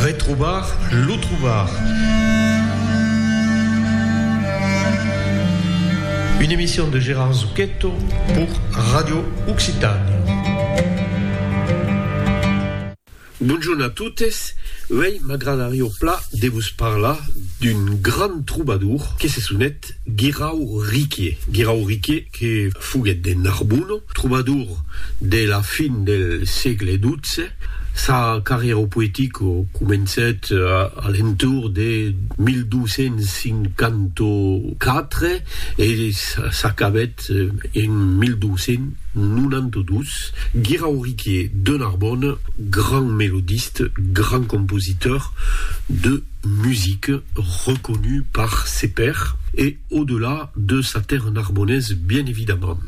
Retrobar lo trobar. Une emission de Gérard Zucchetto pour Radio Occitània. Bonjorn a totes, uèi m'agradarió pla de vos parlar d'un grand trobadour que se sonet Guirau Riquier. Guirau Riquier. que foguèt de Narbona, trobador de la fin del sègle xii. Sa carrièra poetica comencèt a l'entorn de 1254 e s'acabèt en 1292. Guirauriquier de Narbona, grand melodiste, grand compositor de musica, reconut par ses pairs e. Au-delà de sa terre narbonnaise bien évidemment.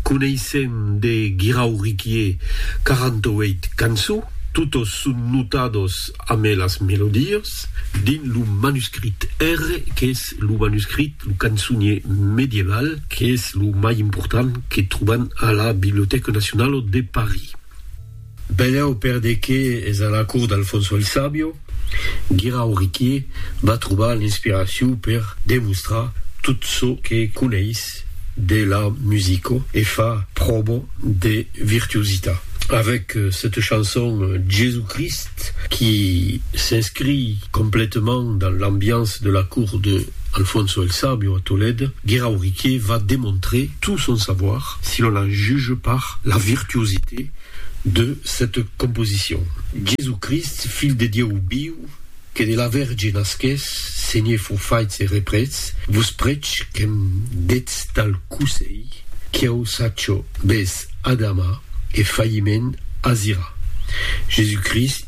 Coneissèm de Guirau Riquier 48 cançons, totes son notades ame las melodies, dins lo manuscrit R, qu'es lo manuscrit, lo cançonier medieval, qu'es lo mai important que trobam a la Bibliothèque Nationale de Paris. Benlèu per de qué es a la cour d'Alfonso el Sabio, Guirao Riquier va trobar l'inspiracion per demostrar tot çò que coneis de la musico e fa pròba de virtuositat avèc cette chanson Jésus Christ qui s'inscrit complètement dans l'ambiance de la cour de Alfonso el Sabio a Tolède, Guirao Riquier va demontrer tout son savoir. Si l'on la juge par la virtuosité de cette composition. Jésus-Christ, Filh de Dieu viu, que de la Verge nasqués, Senhé fou faits e reprets, vos prech que'm detz tal cousèi, qu'ieu sacho bes adamar e failliment azirar. Jésus-Christ,